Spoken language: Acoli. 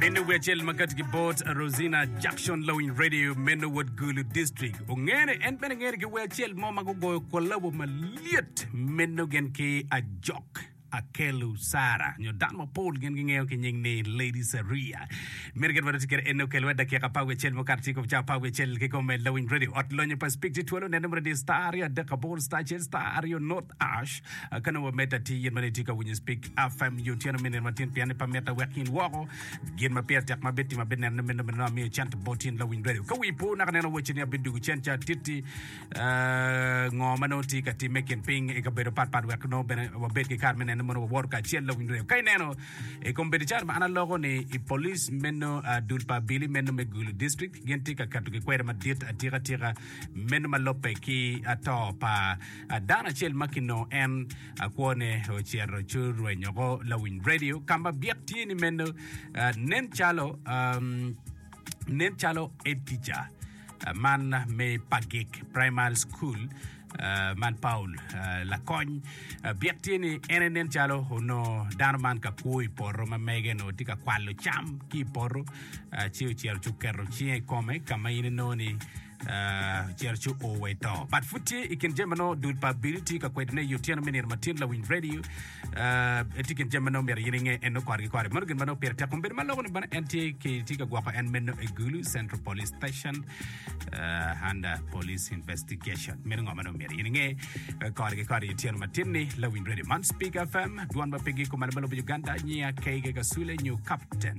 Meno wiye acel ma kati ki bot Rosina Jackson Lawiny Radio meno wod Gulu District. Ongene en bene ngene ki wiye acel mo ma gugoyo kolabo malyet meno gen ki ajok akelu Sara nyo dan mapol gen gingeyo ki nying ni Lady Saria. Meno gen wadu tikere en okelo dakika pa wiye acel mo kati ko cha pa wiye acel ki kome Lawiny Radio. Ot lonyo pa Speak ti twolo neno radio star aryo adek abor star acel star aryo not Ash, Ka nongo wamedde atir, in mene itye ka winyo Spik FM yo tyeno me nino matin pien ni pe mitte wek in woko. Gin ma pire tek ma abitimo abineno ni meno meno amiyo cent bot in lawiny redio. Ka wiyi po naka neno wacce ni abidwogo cent ca titti eh, ngo ma nongo tye ka timme i kin piny i kabedo pat pat wek nongo bene wabed ki kare me neno ni mono wawoto kacel lawiny redio. Ka ineno i kom bedo caro ma an aloko ni i polis meno ah, dul pa abili meno me Gulu District gin tye ka keto ki kwede madit atika tika meno ma lobbe ki ato pa A Dano acel ma kinongo en akwone ocito ci orwenyo oko lawiny redio ka ma byek tye ni meno, ah, nen calo um, nen calo ed tica ah, man me Pagik Primary School ah, man Paul ah, Lakony ah, byek tye ni en nen calo onongo dano man ka kwo i poto ma mege nongo tye ka kwalo cam ki i poto ah, ci ocito ci oketo cinge i kome ka ma in inongo ni Uh, cero cu o wa i to. But pud tye i kin jami ma nongo dul pa abili tye ka kwedo ne i otyeno me nino matin lawiny radio. Uh, etye i kin jami ma nongo myero in inge en nongo korgi kore. Mano gin ma nongo pire tek kun bedo ma loko ni bene en tye ki tye ka gwoko en meno i Gulu Central Police Station uh, under police investigation. Meno ngo ma nongo myero in inge eh, korgi kore i otyeno matin ni lawiny radio man Speak FM dwon ma pigi kumalo ma lobo Uganda nyiya Keige Gasule nyo Captain